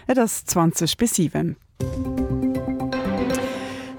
Et ass 20 bis 7.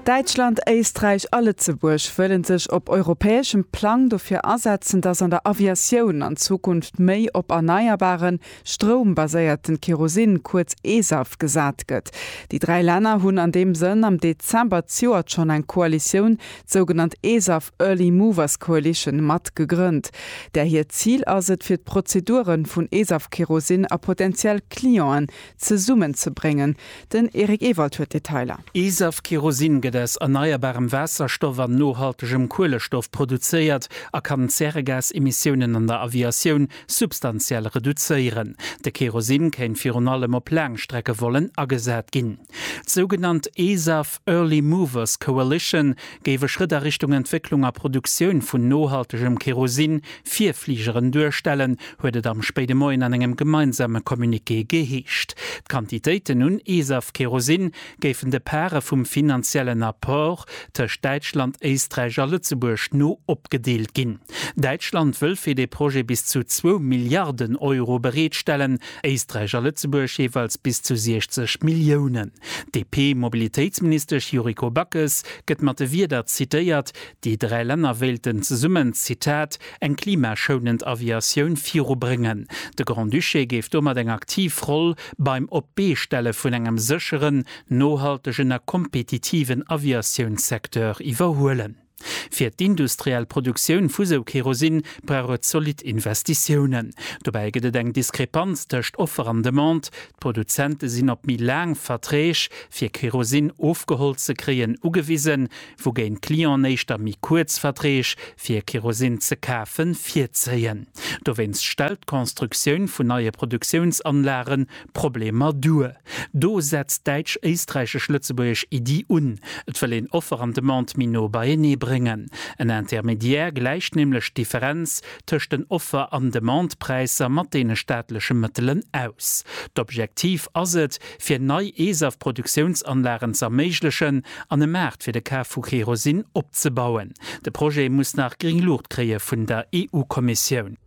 Däitschland, Éisträich a Lëtzebuerg wëlle sech op europäeschem Plang dofir asetzen, datt an der Aviatioun an Zukunft méi op erneierbare Stroum baséierten Kerosin, kuerz e-SAF, gesat gëtt. Déi dräi Länner hunn an deem Sënn am Dezember d'Joert schonn eng Koalitioun, d'sougenannt e-SAF, Early Movers Coalition mat gegrënnt, där hiert Zil ass et, fir d'Prozedure vun ESAF-Kerosin a potentiell Clienten zesummenzebréngen. Den Eric Ewald huet d'Detailer. ESAF-Kerosin gëtt aus erneierbarem Waasserstoff an nohaltegem Kuelestoff produzéiert a kann d'Zäregasemissiounen an der Aviatioun substantiell reduzéieren. De Kerosin kéint virun allem op Laangstreckevollen agesat ginn. D'sougenannt ESAF. Early Movers Coalition géif e Schrëtt a Richtung Entwécklung a Produktioun vun nohaltegem Kerosin fir Fligeren duerstellen, huet et am spéide Moien an engem gemeinsame Communiqué geheescht. D'Quantitéiten un ESAF-Kerosin géifen de Pare vum finanziellen Apport tëscht Däitschland, Éisträich a Lëtzebuerg no opgedeelt ginn. Däitschland wëll fir dee Projet bis zu zwou Milliarden Euro bereetstellen, Éisträich a Lëtzebuerg jeeweils bis zu 60 Milliounen. D'DP-Mobilitéitsministesch Yuriko Backes gëtt mat de Wierder zitéiert, déi dräi Länner wéilten zesummen, Zitat, eng klimaschounend Aviatioun virubrëngen. De Grand-Duché géif domat eng aktiv Roll beim Op-d'Bee-Stelle vun engem sécheren, nohaltegen a kompetitiven Aviatiounssecteur iwwerhuelen. Fir d'industriell Produktioun vu sou Kerosin brauch et zolidd Investitiounen. Dobäi gëtt et eng Diskrepanz tëscht Offer an Demande, d'Produzente sinn op méi laang Verträg, fir Kerosin ofgeholl ze kréien, ugewisen, wougéint d'Clienten éischter méi kuerz Verträg, fir Kerosin ze kafen, virzéien. Dowéinst stellt d'Constructioun vun neie Produktiounsanlage Problemer duer. Do setzt d'däitsch-éisträichesch-lëtzebuergesch Iddi un, et wëll een Offer an Demande méi no beienee bréngen. En Intermédiaire gläicht nämlech d'Differenz tëscht den Offer an Demandepräisser mat deene staatleche Mëttelen aus. D'Objektiv ass et, fir nei ESAF-Produktiounsanlagen ze erméiglechen an e Maart fir de Kaf vu Kerosin opzebauen. De Projet muss nach gring Luucht kréie vun der EU-Kommissioun.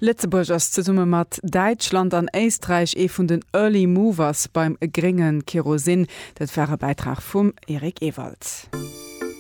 Lëtzebuerg ass zesumme mat Däitschland an Éisträich ee vun den Early Movers beim grénge Kerosin. Dat war e Bäitrag vum Eric Ewald.